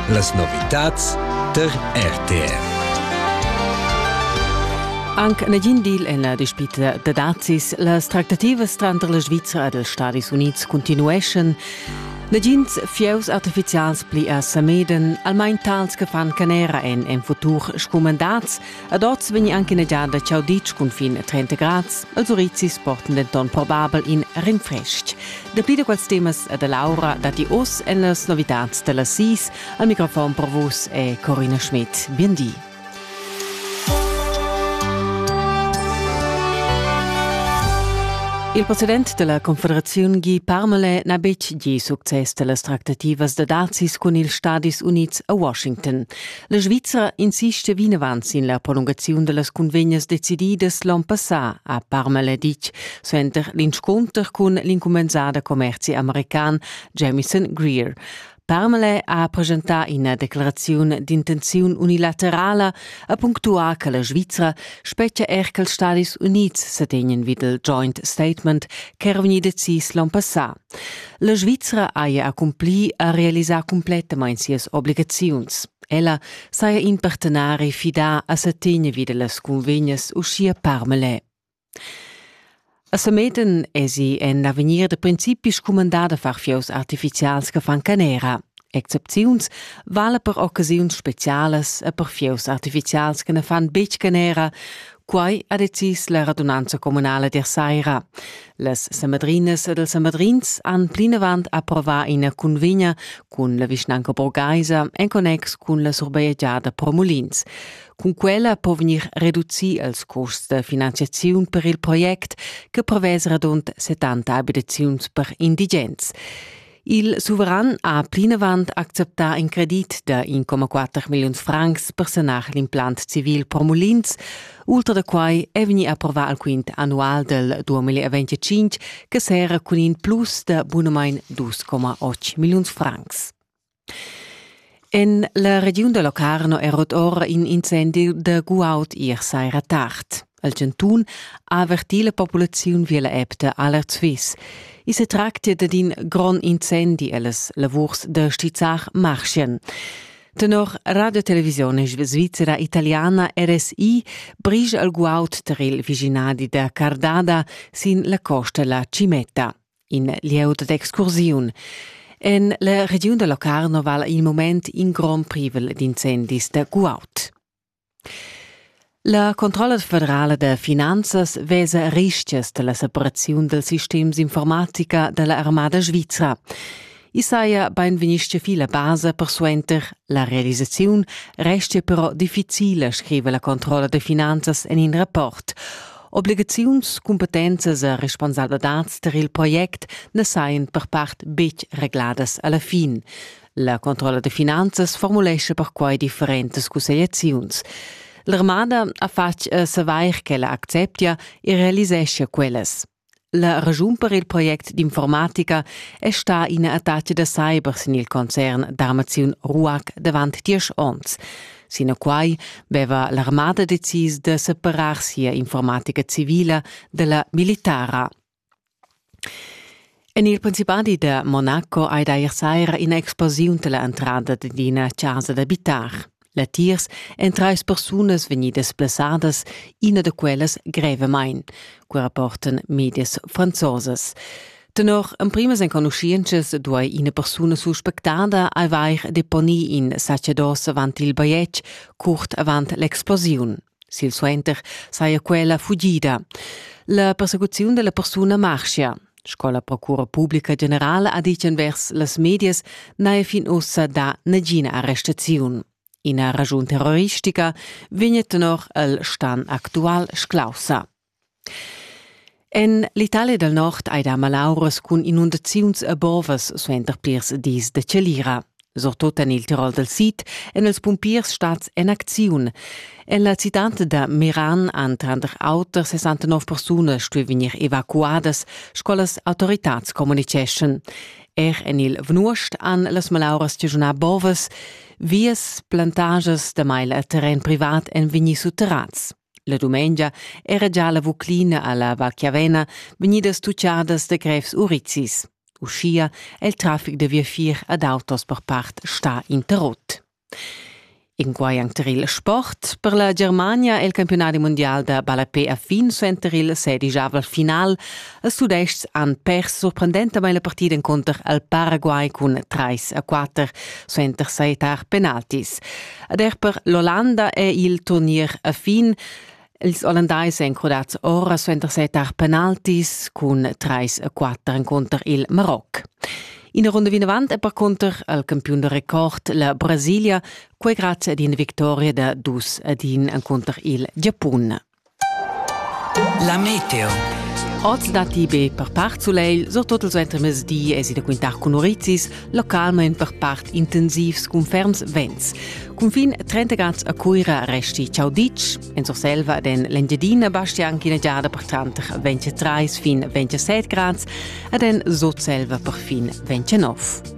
Las novitads tar RTV. Anc negin deal en la dispita da dazis. Las tractativas tranter la Svizra ed els Stadis Unids continueschan. Nagins fieus artifizials pli a Sameden, almain tals che fan canera en en futur scumandats, Ad oz vegni anche in giada chau ditg cunfin a 30 grads. Els urizis portan denton probabel in rinfrestg. Dapli da quels temas e da Laura datti oz en las novitads da las sis. Al microfon per vus è Corina Schmidt. Bien di. Il president della Confederazione Guy Parmale n'ha betg gì success da las tractativas da dazis cun ils Stadis Unids a Washington. La Svizra insista vinavant sin la prolungaziun da las cunvegnas decididas l'on passà, ha Parmala ditg, suenter l'inscunter cun l'incumenzada commerzi american Jamison Greer. Parmale ha presentà ina declaraziun d'intenziun unilaterala, ha punctuà che la Svizra spetgia er che els Stadis Unids sa tegnan vid il joint statement ch'era vegnì decis l'on passà. La Svizra haja accumpli a realisar cumplettamain sias obligaziuns. Ella saja in partenari fidà a sa tegna vi da las cunvegnas uschia parmelè. A Sameten esi en avegnir da principi scumandada far fieus artificials che fan canera. Excepziuns vala per occasiuns specialas e per fieus artificials che ne fan betg canera, Quai ha decis la radunanza communala der saira. Las Samadrinas ed els Samadrins han plinavant approvar ina cunvegna cun la vischnanca borgaisa en connex cun la surbajegiada pro Mulins. Cun quella po vegnir reducì els custs da finanziaziun per il project che prevesa radund 70 abitaziuns per indigens. Il suveran ha plinavant acceptà in credit da 1,4 milliun francs per sanar l'implant civil per mulins. Ultra da quai è vegnì approvà il quint annual del 2025 che serra cun in plus da bunamain 2,8 milliun francs. En la regiun da Locarno è rot ora in incendi da guaud ier saira tard. El chantun ha avertì la populaziun via la app da Alert Swiss. I se tractia dad in grond incendi e las lavurs da stizzar marschien. Tenor Radio Televisione Svizzera Italiana RSI brige al guaud tar il viginadi da Cardada sin la costa la Cimetta, in lieu d'excursiun. En la regiun da Locarno vala il moment in grond privel d'incendis da guaud. La controlla federala da finanzas vesa rischias dalla separaziun dal sistem d'informatica dalla armada svizra. I saja beinvegnisce fi la basa per suenter la realisaziun restia però difficile, scriva la controlla da finanzas en in rapport. Obligaziuns, cumpetenzas e responsabladad tar il project na sajan per part betg regladas alla fin. La controlla da finanzas formulescha perquai differentas cussegliaziuns. L'armada ha fatg eh, savair ch'ella acceptia e realiseschia quellas. La ragiun per il project d'informatica è stata ina attacca da cyber sin il concern d'armaziun RUAC davant diesch onns. Sinaquai veva l'armada decis da separar sia informatica civila dalla militara. En il principadi da Monaco ei deir saira ina explosiun dalla entrada d'ina casa d'abitar. Latiers èn trais persunas vegnidas blessadas, ina da quellas grevamain, cu rapportan medias franzosas. Tenor emprimas enconuschientschas duai ina persuna suspectada avair deponì in sacedos avant il bajetg curt avant l'explosiun. Silsuenter saja quella fugida. La persecuziun della persuna marschia. Sco la Procura Publica Generala ha ditg envers las medias, n'haja fin ussa dà nagina arrestaziun. Ina ragiun terroristica vegn tenor el stan actual sclaussa. En l'Italia dal Nord hai dà malauras cun inundaziuns e bovas suenter plirs dis da chalira. Surtut en il Tirol dal Sid èn els pumpiers stads en acziun. En la citad da Meran han tranter auter 69 persunas stuì vegnir evacuadas, sco las autoritads communitgeschan. Er en il Vnuost han las malauras chaschunà bovas. Vias, plantagias, damai il terren privat èn vegnì sutterrads. La dumengia era già la Vuclina alla Vacchiavena vegnidas tucciadas da grevs urizis. Uschia è il traffic da viafier ad autos per part sta interrott. In quai enter il sport. Per la Germania è il campionadi mondial da ballapé a fin suenter il sedigiavel final Ils Tudestgs han pers surprendentamain la partida encunter il Paraguay cun 3 a 4 suenter sajettar penaltis. Ed er per l'Ollanda è il turnier a fin. Ils Ollandais èn crudats ora suenter sajettar penaltis cun 3 a 4 encunter il Maroc. Ina runda vinavant è percunter il campiun da record la Brasilia, quai grazie ad ina victoria da dus ad in encunter il Giapun. La meteo. Oz datti be per part sulegl, surtut ils entremezdi èsi da quintar cun urizis, localmain per part intensivs cun ferms vents. Cunfin 30 grads a Cuira resti ciao ditg. En Surselva den l'Engiadina basti anche una giada per tranter 23 fin 27 grads ed en Sutselva per fin 29.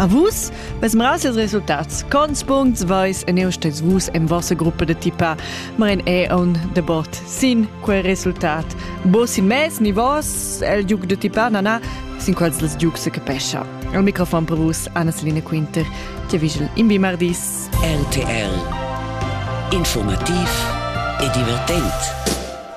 A vus? Bez mras ils resultats. Cons puncts vais en eu stes vus en vossa gruppa de tipa, ma en è un debat sin quel resultat. Bo sin mes ni vos, el giuc de tipa nana, sin quals les giuc se capescha. Il microfon per vus, Anna-Selina Quinter, che vigel in bimardis. RTL Informativ e divertent.